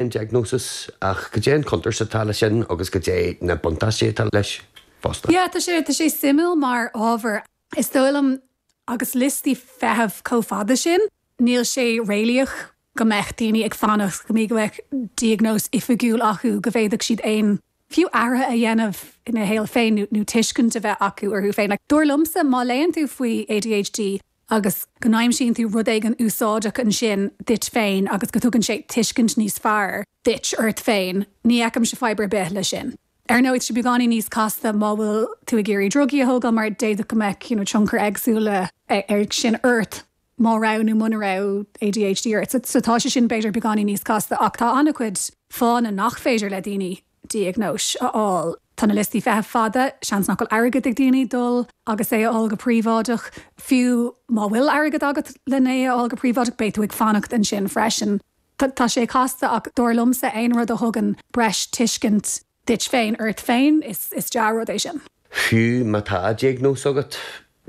an diagnóis, ach cad é an chontúirt atá leis sin agus cad é na buntáistí atá leis fosta? Yeah, tá sé, tá sé suimiúil mar ábhar. Is dóigh liom, agus liostaí feithimh chomh fada sin, níl sé réalaíoch go mbeadh daoine ag fanacht go mbí go mbeadh diagnóis oifigiúil acu go bhféadfadh siad aon, fiú athruithe a dhéanamh ina shaol féin nó tuiscint a bheith acu orthu féin. Like, dar liomsa, má léann tú faoi ADHD, agus go n-aimsíonn tú rud éigin úsáideach ansin duit féin agus go dtugann sé tuiscint níos fearr duit ort féin, ní fheicimse fadhb ar bith leis sin. Ar ndóigh, tá sé beagáinín níos casta má bhfuil tú ag iarraidh drugaí a thógáil mar d'fhéadfadh go mbeadh you know tionchair éagsúla aige sin ort má raibh nó muna raibh ADHD ort so tá sé sin b'fhéidir beagáinín níos casta ach tá an-chuid fáthanna nach féidir le daoine diagnóis a fháil. Tá na liostaí feithimh fada, seans nach bhfuil airgead ag daoine dul agus é a fháil go príobháideach. Fiú má bhfuil airgead agat lena a fháil go príobháideach, beidh tú ag fanacht ansin freisin. Tá sé casta ach dar liomsa aon rud a thugann breis tuiscint duit féin ort féin, is dea-rud é sin. Fiú má tá diagnóis agat,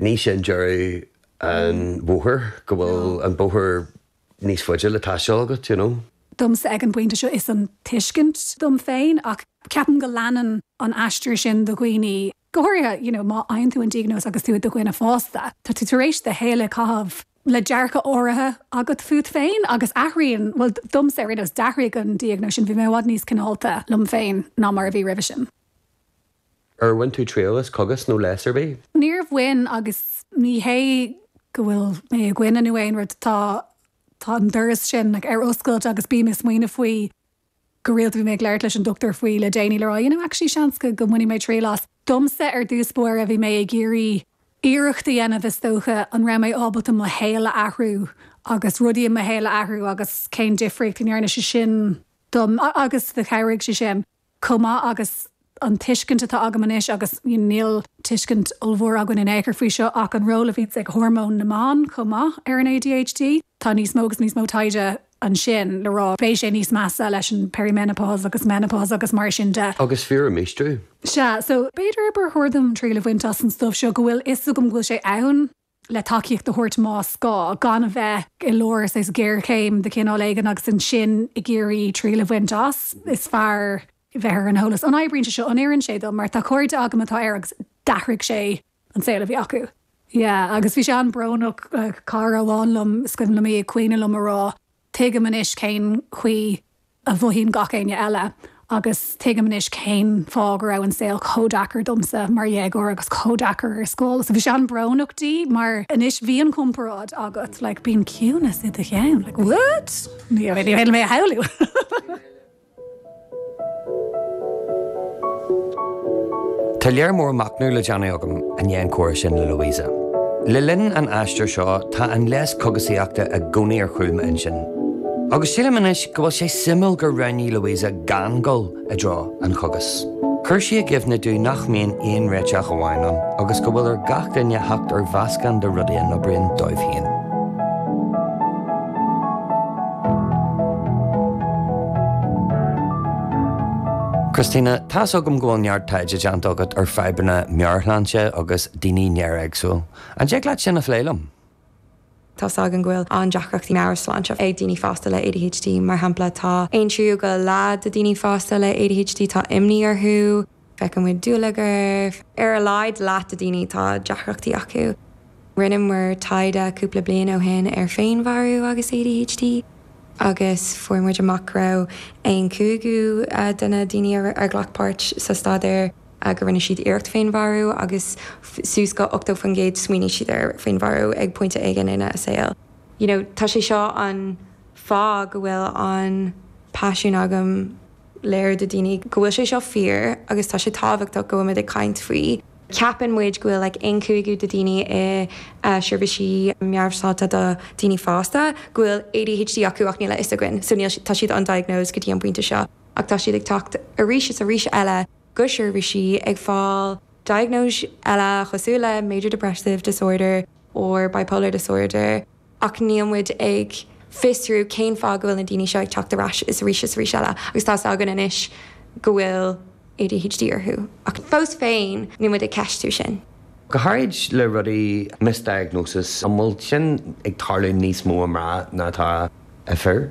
ní shin deireadh an bhóthair, go bhfuil an bóthar níos faide le taisteal agat, you know. Domsa ag an bpointe seo is é an tuiscint dom féin ach ceapaim go leanann an aistear sin do dhaoine, go háirithe you know má fhaigheann tú an diagnóis agus tú i do dhuine fásta, tá tú tar éis do shaol a chaitheamh le dearcadh áirithe agat fút féin agus athraíonn, bhuel domsa ar aon nós, d'athraigh an diagnóis sin, bhí mé i bhfad níos cineálta liom féin ná mar a bhí roimhe sin. Ar bhain tú triail as cogas nó leigheas ar bith? Níor bhain agus ní hé go bhfuil mé ina choinne nó aon rud. Tá, tá an doras sin ar oscailt agus bím ag smaoineamh faoi go rialta. Bhí mé ag labhairt leis an dochtúir faoi le déanaí le rá, you know, actually seans go mbainfidh mé triail as. Domsa, ar dtús báire, bhí mé ag iarraidh iarracht a dhéanamh, is dócha, an raibh mé ábalta mo shaol a athrú agus rudaí i mo shaol a athrú agus cén difríocht a ndearna sé sin dom agus chabhraigh sé sin. chomh maith agus an tuiscint atá agam anois, agus níl tuiscint ollmhór againn in aon chor faoi seo, ach an ról a bhíonns ag hormóin na mban chomh maith ar an ADHD. Tá níos mó agus níos mó taighde ansin le rá beidh sé níos measa leis an perimenopause agus menopause agus mar sin de. Agus fiú ar an míostrú. Sea, so, b'fhéidir, go mba chóir dom triail a bhaint as an stuif seo, go bhfuil fhios agam go bhfuil sé ann. le tacaíocht a thabhairt más gá, gan a bheith i lár, say, géarchéim de chineál éigin agus ansin ag iarraidh triail a bhaint as. Is fearr bheith ar an eolas. An oibríonn sé seo? An oireann sé dom? Mar tá cairde agam atá air agus d'athraigh sé an saol a bhí acu. Yeah, agus bhí sé an-bhrónach. Cara amháin liom, is cuimhin liom í ag caoineadh liom ag rá. Tuigim anois cén chaoi a mhothaíonn gach éinne eile, agus tuigim anois cén fáth go raibh an saol chomh deacair domsa mar dhéagóir agus chomh deacair ar scoil. So bhí sé an-bhrónach dom, mar anois bhí an chomparáid agam, like, bíonn ciúnas i do cheann, like, what? Ní féidir liom é a shamhlú! Tá léar mór machnaimh le déanamh agam i ndiaidh an comhrá sin le Louisa. Le linn an aistir seo, tá an leigheas cógaisíochta i gcónaí ar chúl m'intinn. Agus sílim anois go bhfuil sé suimiúil gur roghnaigh Louisa gan dul i dtreo an chógais. Chuir sí i gcuimhne domh nach mbíonn aon réiteach amháin ann agus go bhfuil ar gach duine theacht ar mheascán de rudaí a n-oibríonn dóibh féin. Christina, Tá's agam go bhfuil neart taighde déanta agat ar fadhbanna meabhairshláinte agus daoine néaréagsúil. An dtig leat sin a phlé liom? Tá's againn go bhfuil an-deacrachtaí meabhairshláinte ag daoine fásta le ADHD. Mar shampla, tá aon tríú go leath de daoine fásta le ADHD, tá imní orthu, feiceann muid dúlagar, ar a laghad leath de daoine tá deacrachtaí acu. Rinne muid taighde cúpla bliain ó shin ar féinmharú agus ADHD agus fuair muid amach go raibh aon chúigiú de na daoine a ghlac páirt sa staidéar, go rinne siad iarracht féinmharú agus suas go 80% smaoinigh siad ar féinmharú ag pointe éigin ina a saol. you know tá sé seo an fáth go bhfuil an paisiún agam. léiriú do daoine go bhfuil sé seo fíor agus tá sé tábhachtach go bhfuil muid ag caint faoi. ceapann muid go bhfuil like aon cúigiú de daoine i seirbhísí meabhairshláinte do daoine fásta go bhfuil ADHD acu ach níl a fhios againn so níl siad tá siad undiagnosed go dtí an pointe seo ach tá siad ag teacht arís is arís eile go seirbhísí ag fáil diagnóis eile cosúil le major depressive disorder or bipolar disorder ach níl muid ag fiosrú cén fáth go bhfuil na daoine seo ag teacht arís is arís is arís eile agus tá's againn anois go bhfuil ADHD orthu ach fós féin níl muid ag ceistiú sin. Go háirid le rudaí misdiagnosis, an bhfuil sin ag tarlú níos mó i mná ná atá i fir?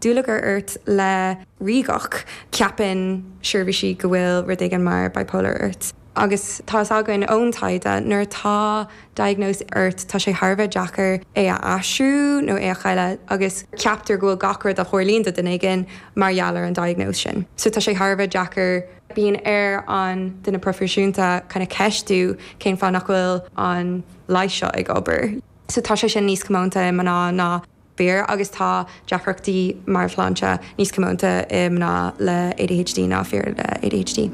dúlagar ort le ríogacht, ceapann seirbhísí go bhfuil rud éigin mar bipolar ort. Agus tá fhios againn ón taighde, nuair atá diagnóis ort, tá sé thar a bheith deacair é a athrú nó é a chailleadh agus ceaptar go bhfuil gach rud a tharlaíonn do duine éigin mar gheall ar an diagnóis sin. So tá sé thar a bheith deacair. Bíonn ar an duine proifisiúnta kinda ceistiú cén fáth nach bhfuil an leigheas seo ag obair. So tá sé sin níos comónta i mná ná. B'fhíor, agus tá deacrachtaí meabhairshláinte níos comónta i mná le ADHD ná fir le ADHD.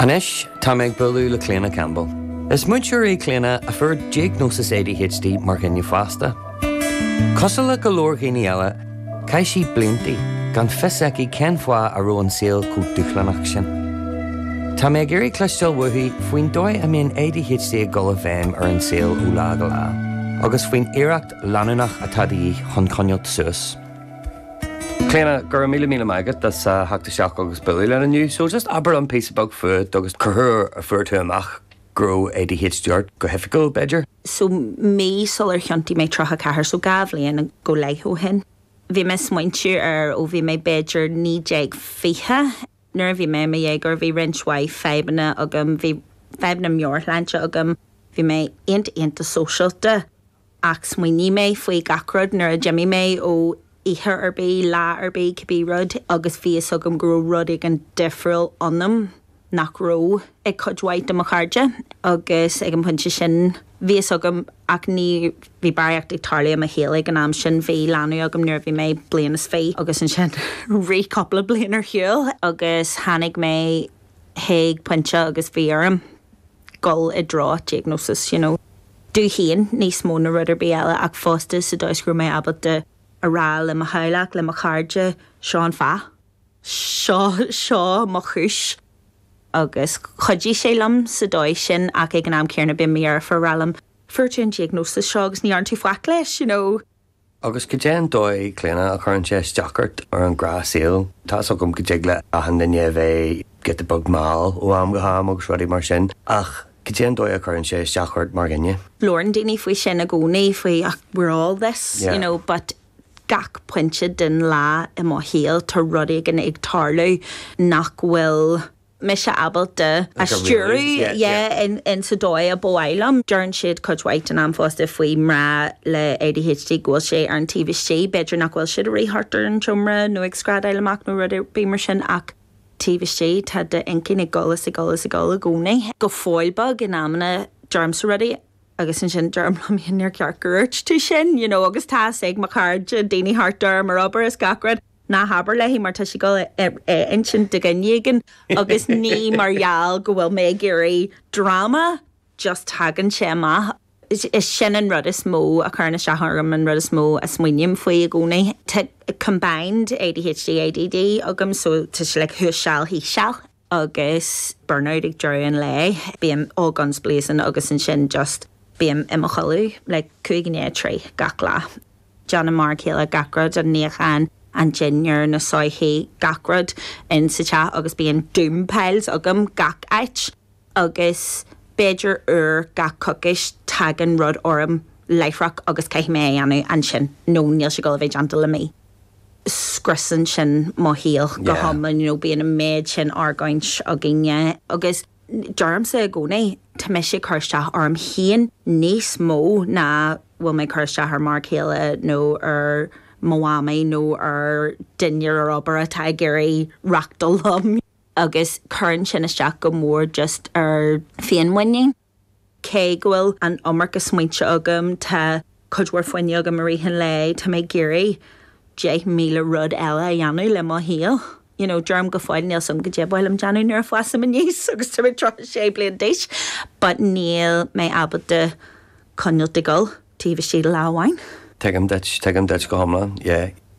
Anois tá mé ag bualadh le Cliona Campbell. Is múinteoir í Cliona a fuair diagnósis ADHD mar dhuine fásta. Cosúil le go leor daoine eile, Chaith sí bliantaí gan fios aici cén fáth a raibh an saol chomh dúshlánach sin. Tá mé ag iarraidh cloisteáil uaithi faoin dóigh a mbíonn ADHD ag dul i bhfeidhm ar an saol ó lá go lá, agus faoin iarracht leanúnach atá de dhíth chun coinneáil suas. Clíona, go raibh míle míle maith agat as a theacht isteach agus bualadh linn inniu. So just abair dom píosa beag fút agus cén uair a fuair tú amach. go raibh ADHD ort, go hoifigiúil, b'fhéidir. so mí sular thiontaigh mé 34, so dhá bhliain go leith ó shin. Bhí mé ag smaointiú air ó bhí mé b'fhéidir naoi déag, fiche. Nuair a bhí mé i mo dhéagóir bhí roinnt mhaith fadhbanna agam, bhí fadhbanna meabhairshláinte agam, bhí mé iontach iontach sóisialta. ach smaoinigh mé faoi gach rud nuair a d'imigh mé ó oíche ar bith, lá ar bith, cibé rud, agus bhí fhios agam go raibh rud éigin difriúil ionam nach raibh ag cuid mhaith de mo chairde, agus ag an bpointe sin, bhí fhios agam, ach ní, bhí barraíocht ag tarlú i mo shaol ag an am sin, bhí leanbh agam nuair a bhí mé bliain is fiche, agus ansin rith cúpla bliain ar shiúl, agus tháinig mé. chuig pointe agus bhí orm dul i dtreo diagnosis you know domh féin níos mó na rud ar bith eile ach fosta sa dóigh is go raibh mé ábalta a rá le mo theaghlach, le mo chairde, seo an fáth. seo, seo mo chúis agus chuidigh sé liom sa dóigh sin ach ag an am céanna bíonn mo dheirfiúr ag rá liom fuair tú an diagnosis seo agus ní dhearna tú faic leis you know. Agus cad é an dóigh, Clíona, a chuireann sé isteach ort sa ghnáthshaol? Tá's agam go dtig le achan duine a bheith giota beag mall ó am go ham agus rudaí mar sin, ach cad é an dóigh a chuireann sé isteach ort mar dhuine? Labhrann daoine faoi sin i gcónaí, faoi ah we're all this, you know, but gach pointe den lá i mo shaol tá rud éigin ag tarlú nach bhfuil. mise ábalta a stiúradh yeah in sa dóigh a ba mhaith liom. Deireann siad cuid mhaith den am fosta faoi mná le ADHD go bhfuil sé ar an taobh istigh, b'fhéidir nach bhfuil siad ag rith thart ar an seomra nó ag screadaíl amach nó rud ar bith mar sin ach taobh istigh tá d'inchinn ag gol is ag gol is ag gol i gcónaí, go fóill beag in amanna deirimse rudaí agus ansin deirim liom fhéin níor cheart gur dhúirt tú sin you know agus tá's ag mo chairde, daoine thart orm, ar obair is gach rud. Ná habair léi, mar tá sí ag dul a insint do dhuine éigin agus ní mar gheall go bhfuil mé ag iarraidh dráma, just tagann sé amach. Sin an rud is mó a chuireann isteach orm, an rud is mó a smaoiním faoi i gcónaí. Tá combined ADHD, ADD agam so tá sé like thuas seal thíos seal. agus burnout ag deireadh an lae, bím all guns blazing agus ansin just bím i mo chodladh like cúig i ndiaidh a trí gach lá. Déanann m'fhear céile gach rud, an níochán, an dinnéar, na soithí, gach rud in sa teach agus bíonn doom piles agam gach áit agus b'fhéidir uair gach coicís tagann rud orm láithreach agus caithfidh mé é a dhéanamh ansin nó níl sé ag dul a bheith déanta le mí. scriosann sin mo shaol go hiomlán, you know, bíonn an méid sin argóintí againne. Agus deirimse i gcónaí, tá mise ag cur isteach orm féin níos mó ná bhfuil mé ag cur isteach ar m'fhear céile nó ar mo mhamaí nó ar dhuine ar obair atá ag iarraidh reáchtáil liom. Agus cuireann sin isteach go mór just ar féinmhuinín. Cé go bhfuil an iomarca smaointe agam, tá cuid mhór fuinnimh agam i rith an lae, tá mé ag iarraidh deich míle rud eile a dhéanamh le mo shaol. You know, deirim go fóill, níl a fhios agam caidé ba mhaith liom a dhéanamh nuair a fhásaim aníos agus tá mé 36 bliain d'aois, but níl mé ábalta coinneáilt ag gol taobh istigh de lá amháin. Tuigim duit, tuigim duit go hiomlán, yeah.